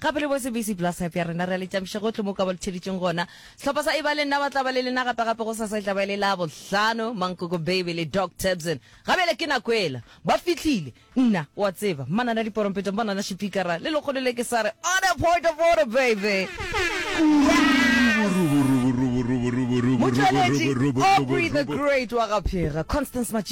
Gape le bose busy bla sap ya rena re a le tšampiša gohle mo ka ba le tšheditšeng gona. Sehlopha sa Eba le nna ba tla ba le lena gape gape gosasa e tla ba e le Labohlano. Mankoko Baby le Doc Tebson ga bjale ke nako ela ba fihlile. Nna o a tseba manana diporompetong manana šipikara le lekgolo le ke sa re on a point of order baby. Motšweletši Aubrey the Great wa ga Phega Constance Matšilo.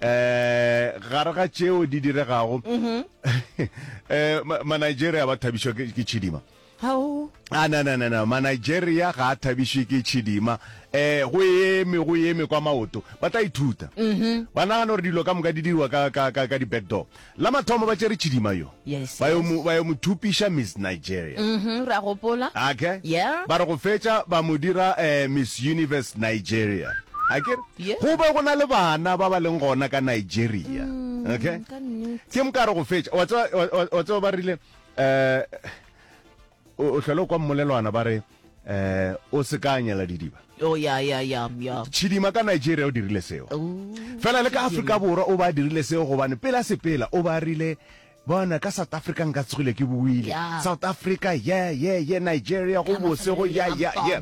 eh gare ga tšeo di diregago um manigeria ba thabišwa ke ke tšhidima Hao. a na na na na manigeria ga a thabišwe ke tšhidima um go eme go eme kwa maoto ba tla ithuta ba nagana gore dilo ka moka di diriwa ka- ka ka- ka di-back door La mathomo ba tšere Chidima yo, Yes, ba yo yes. mo, ba yo mo thupiša Miss Nigeria. Mhm, re a gopola. Ake? Yeah. Ba re go fetša ba mo dira eh, Miss Universe Nigeria. Akere? Yeah. Go be go na le bana ba ba leng gona ka Nigeria. Okay? Ka nnete. Ke mokare go fetša. Wa tseba- wa- wa- wa tseba ba rile, eh, o hlole o kwa mmolelwana ba re um o se ka anyela didiba oh, ya, ya, ya, ya. tšhidima ka nigeria o dirile seo oh, fela le ka afrika borwa o ba dirile seo gobane pela sepela o ba rile bona ka south africa nka tsogile ke buile yeah. south africa ye yeah, ye yeah, ye yeah, nigeria go bose go ya ya ye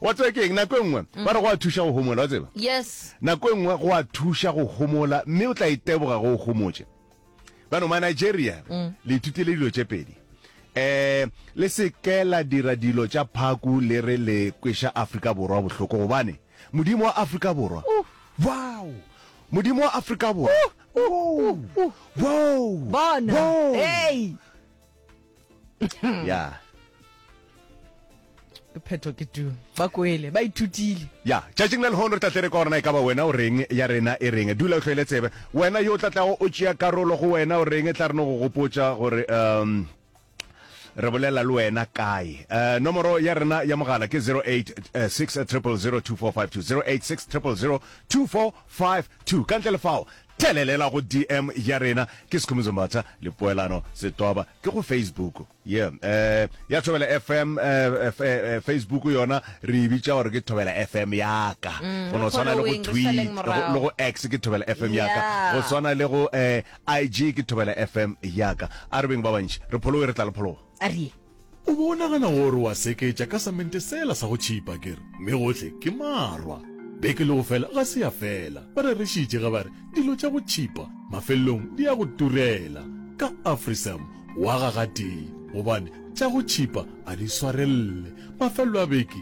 wa tseba ke eng nako e nngwe mm. ba re go a thuša go homola wa tseba yes nako e nngwe go a thuša go homola mme o tla iteboga e go o homotše bano ma Nigeria mm. le ithutile dilo tše pedi eh le se ke la dira dilo tša phaku le re le kwesha Afrika Borwa bohloko gobane modimo wa Afrika Borwa wow modimo wa Afrika Borwa wow wow bona hey ya phetho ke tu ba koele ba ithutile ya tšatšing la lehono re tla tle re ka gorena e ka ba wena o reng ya rena e reng dula o tlhoele tsebe wena yo o tla tlago o tšea karolo go wena o reng e tla reno go gopotsa gore um re bolela le wena kae um nomoro ya rena ya mogala ke 086 0002452 086 0002452 ka ntle le fao Thelelela go DM ya rena ke Sikhumbuzo Mbatha le Poelano Setoba ke go Facebook. Yeah. Eh, ya Thobela FM eh, f- eh, eh, Facebook yona re e bitša gore ke Thobela FM ya ka. Go no tshwana le go following, re tweet saleng le go- morago. le go X ke Thobela FM ya ka. Yeah. Go tshwana le go eh, IG ke Thobela FM ya ka. A re beng ba bantši re pholoe re tla le phologo. a re ye O be o nagana gore wa seketša ka samente sela sa go tšhipa, ke re, mme gohle ke marwa. Beke le go fela ga se ya fela, ba rerešitše ge ba re, Dilo tša go tšhipa mafelelong di ya go turela. Ka Afrisam wa ga gatee, gobane tša go tšhipa ga di swarelele. Mafelelo a beke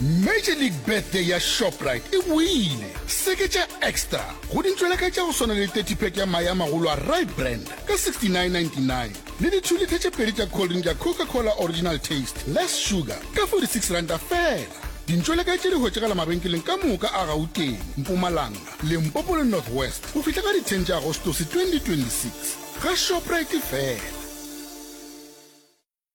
Major League Birthday ya Shoprite e boile. Seketša Extra go dintšwela ka tša go swana le 30 pack ya mae a magolo a Rye Brand ka 69.99 le di-two litha tše pedi tša cold drink ya Coca-Cola Original Taste Less Sugar ka 46 ranta fela. Dintšweleka tše di hwetšagala mabenkeleng ka moka a Gauteng, Mpumalanga, Limpopo le North West go fihla ka di 10 tša Agostose 2026 ga Shoprite fela.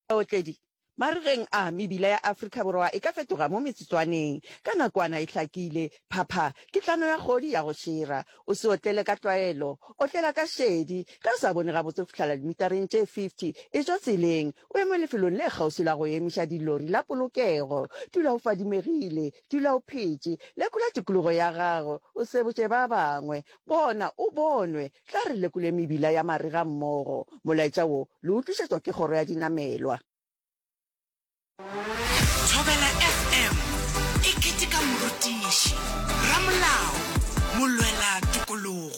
Baotledi ba re geng a mebila ya Afrika Borwa e ka fetoga mo metsotswaneng ka nakwana e hlakile. Phapha ke tlano ya kgodi ya go šera. O se otlele ka tlwaelo, otlela ka šedi. Ge o sa bone gabotse go fihlela dimitareng tše 50, etšwa tseleng o eme lefelong le kgauswi la go emiša dilori la polokego. Dula o fadimegile, Dula o phetše. Lekola tikologo ya gago, o se botše ba bangwe. Bona o bonwe. Tla re lekole mebila ya marega mmogo. Molaetša wo le o tlišetšwa ke Kgoro ya Dinamelwa. Thobela FM e keteka morutiši, ramolao, molwela tokologo.